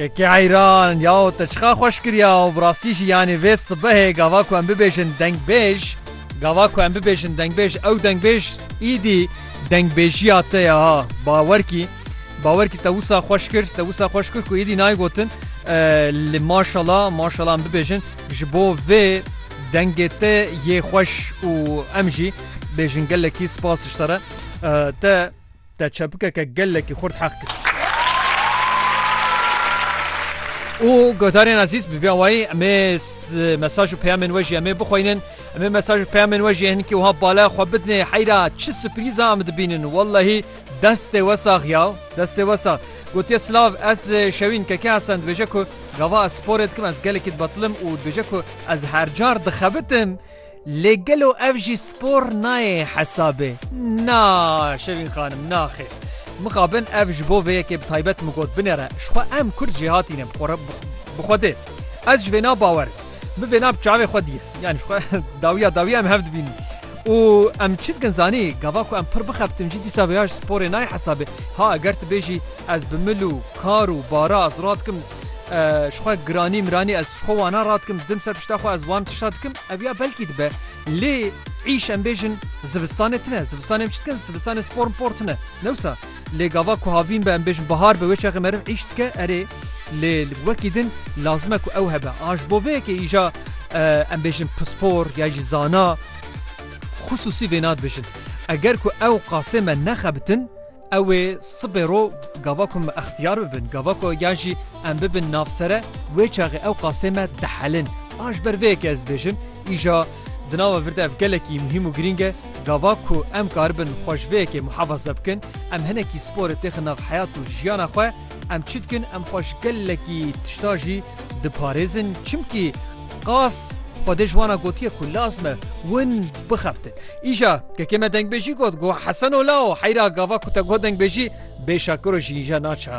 KK Eyran, Yaw te çiqa xweş kiriya û bi rastî jî yanî vê sibehê gava ku em bibêjin dengbêj, gava ku em bibêjin dengbêj ew dengbêj îdî dengbêjiya te ye ha bawer kî, bawer kî te wisa xweş kir, te wisa xweş kir ku îdî nayê gotin li maşala, maşala em bibêjin ji bo vê dengê te yê xweş û em jî bêjin gelekî spas ji te re te. te çepikeke gelekî xurt heq kir. û guhdarên ezîz bi vî awayî em ê mesaj û peyamên we jî em ê bixwînin em ê mesaj û peyamên we jî hinkî wiha bala xwe bidinê heyra çi suprîza em dibînin wellehî destê we sax ya destê we sax gotiye silav ez şewîn keke hesen dibêje ku gava ez sporê dikim ez gelekî dibetilim û dibêje ku ez her car dixebitim Lê gelo ev jî spor nayê hesabê? Na Şevîn xanim na xêr. Mixabin ev ji bo vê yekê bi taybet min got binêre. Ji xwe em kurd jê hatîne bi xwe dê. Ez ji vê na bawer im. Min vê na bi çavê xwe diye. Yanî ji xwe dawiya dawiya em hev dibînin. Û em çi dikin zanî gava ku em pir bixebtin jî dîsa vêya ji sporê nayê hesabê. Ha eger tu bêjî ez bi mil û kar û bara ez radikim, ji xwe giranî miranî ez ji xwe wana radikim didim ser pişta xwe ez wan tişta dikim ev ya belkî dibe lê îş em bêjin zivistanê tine zivistanê em çi dikin zivistanê spor por tine newsa lê gava ku havîn be em bêjin bihar be wê çaxê meriv îş dike erê lê li wekî din lazim e ku ew hebe a ji bo vê yekê îja em bêjin pispor ya jî zana xisûsî vêna dibêjin eger ku ew qasê me nexebitin Ew ê sibê ro gava ku me extiyar bibin, gava ku yan jî em bibin nav sere, wê çaxê ew qasê me dihelin. A ji ber vê yekê ez dibêjim, îja di nava vir de ev gelekî muhîm û girîng e, gava ku em karibin xwe ji vê yekê muhefaze bikin, em hinekî sporê têxin nav heyat û jiyana xwe, em çi dikin, em xwe ji gelekî tişta jî diparêzin, çimkî. Qas Xwedê ji wan a gotiye ku laz me win bixebtin. Îja kekê me dengbêjî got got Heseno lao heyra gava ku te got dengbêjî bê şakiro jî îja naça.